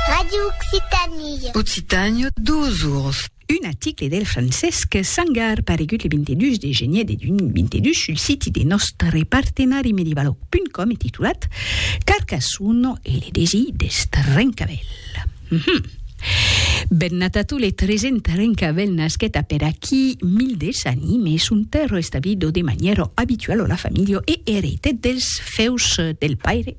Radio Occitanie. Occitània, dos ors. Un article del Francesc Sangar paregut le 22 de genier de 2022 sul siti de nòstre partenari medivalòg.com e titulat Carcassonne e le desir deth rencavel. Mm -hmm. Ben nat a tu le tresent rencavel nasquet a per aquí mil des anime son terro establido de manièra abituala la familha e ereitet dels feus del paire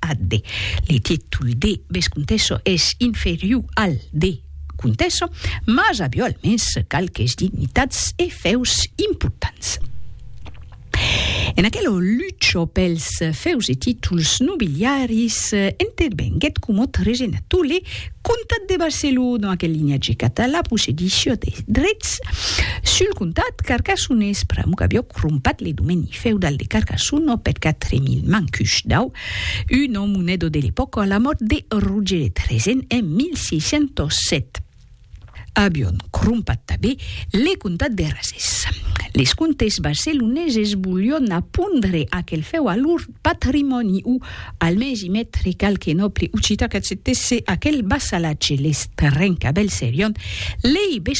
Ad de. Le títol de vescomtessa es inferiu al de comtessa, mas avió almens qualques dignitats e fèus importants. En aquelo lucho pels fèus e títols nobiliaris intervenguèt comòt regenato le comtat de Barcelona, que linhatge català possedissió de drets sul comtat carcassonés pr'amor qu'avió crompat le domeni feudal de Carcassonne au pèt 4000 mancush dau Uno Monedo de l'epòca a la mòrt de Roger de Trezen en 1607. Avion crompat tabé le comtat de Razès. Les comtes barceloneses volion apondre aquel fèu a lor patrimòni o almens i metre qualque nòble occitan qu'acceptèsse aquel vassalatge. Les terrens qu'abelserion lei